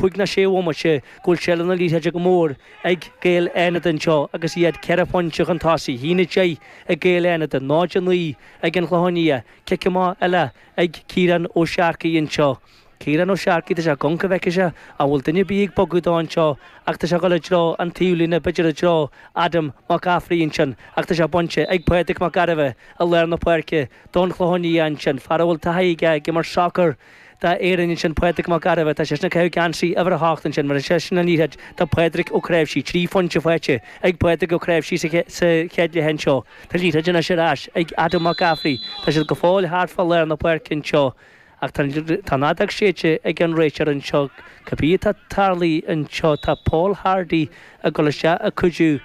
Cúig nó sé bhomaite go bhfuil seilbh na liathróide go mór ag Gaeil Fhánada anseo agus iad ceithre phointe chun tosaigh. 1-10 ag Gaeil Fhánada, 0-9 ag an gClochán Liath. Cic amach eile ag Ciarán Ó Searcaigh anseo. Ciarán Ó Searcaigh, tá sé ag amharc an bhfeicfeadh sé an bhfuil duine ar bith ag bogadh dó anseo ach tá sé ag dul i dtreo an taobhlíne, b'fhéidir i dtreo Adam Mac Gafraidh ansin ach tá sé bainte ag Pádraig Mac Gairbheith i lár na páirce don Chlochán Liath ansin, fear a bhfuil taithí aige ag imirt sacar. d'Éirinn ansin Pádraig Mac Gairbheith, tá seisean ag caitheamh geansaí uimhir a hocht ansin, bheir seisean an liathróid do Phádraig Ó Cnáimhsí. Trí phointe faighte ag Pádraig Ó Cnáimhsí sa chéad leath anseo. Tá an liathróid anois ar ais ag Adam Mac Gafraidh. Tá siad go fóill thart fá lár na páirce anseo ach tá an fheadóg séidte ag an réiteoir anseo. Cibé atá tarlaithe anseo tá Paul Hardy ag dul isteach ag cuidiú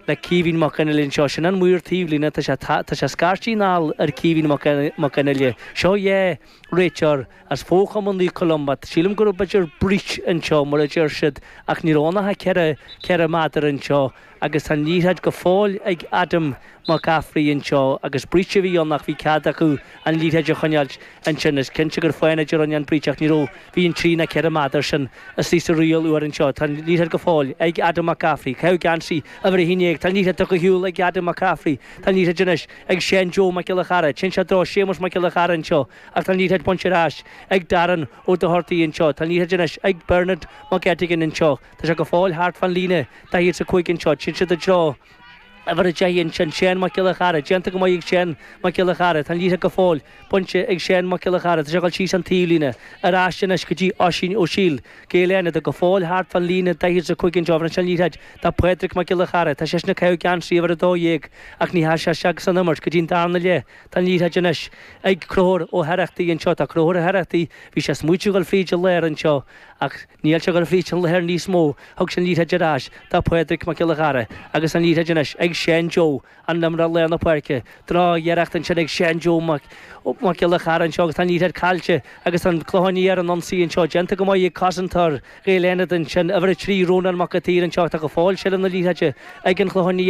le Caoimhín Mac Fhionnaile anseo. Sin an maor taobhlíne. Tá sé ag scairtí anall ar Caoimhín Mac Fhionnaile. Seo é. Réiteoir, as fochumann Naomh Columba. Sílim gurb idir breach anseo, mar a deir siad, ach ní raibh ann ach ceithre, ceithre méadar anseo, agus tá an liathróid go fóill ag Adam Mac Gafraidh anseo, agus breach a bhí ann, ach bhí cead acu an liathróid a choinneáilt ansin. Is cinnte gur Fánaid a rinn an breach, ach ní raibh, bhí ann trí nó ceithre méadar sin, is í sa riail úr anseo. Tá an liathróid go fóill ag Adam Mac Gafraidh. Ag caitheamh geansaí uimhir a haon dhéag. Tá an liathróid tugtha ar shiúl ag Adam Mac Gafraidh. Tá an liathróid anois. ag Seán Joe Mac Giolla Chearra, téann sé i dtreo Séamus Mac Giolla Chearra anseo ach tá an liathróid bainte ar ais ag Darren Ó Dochartaigh anseo, tá an liathróid anois ag Bernard Mac Eiteagáin anseo, tá sé go fóill thart fán líne 45 anseo, téann siad i dtreo uimhir a 10 ansin, Seán Mac Giolla Chearra, déanta go maith ag Seán Mac Giolla Chearra, tá an liathróid go fóill. Bainte ag Seán Mac Giolla Chearra, tá sé ag dul síos an taobhlíne, ar ais anois go dtí Oisín Ó Siail, Gaeil Fhánada go fóill thart fán líne 45 anseo, bheir seisean an liathróid do Phádraig Mac Giolla Chearra, tá seisean ag caitheamh geansaí uimhir 12 ach níor thoisigh seisean ag imirt go dtí an darna leath tá an liathróid anois ag Conchúr Ó hOireachtaigh anseo, tá Conchúr Ó hOireachtaigh, bhí sé ag smaoitiú a dhul fríd an lár anseo ach níl sé ag dul fríd an lár níos mó, thug sé an liathróid ar ais do Phádraig Mac Giolla Chearra agus tá an liathróid anois ag Seán Joe, an t-imreoir lár na páirce. Drochiarracht ansin ag Seán Joe Mac Giolla Chearra anseo agus tá an liathróid caillte agus an Clochán Liath ar an ionsaí anseo. Déanta go maith ag cosantóir Ghaeil Fhánada ansin, uimhir a trí, Rónán Mac an tSaoir anseo ach tá go fóill seilbh na liathróide ag an Chlochán Liath.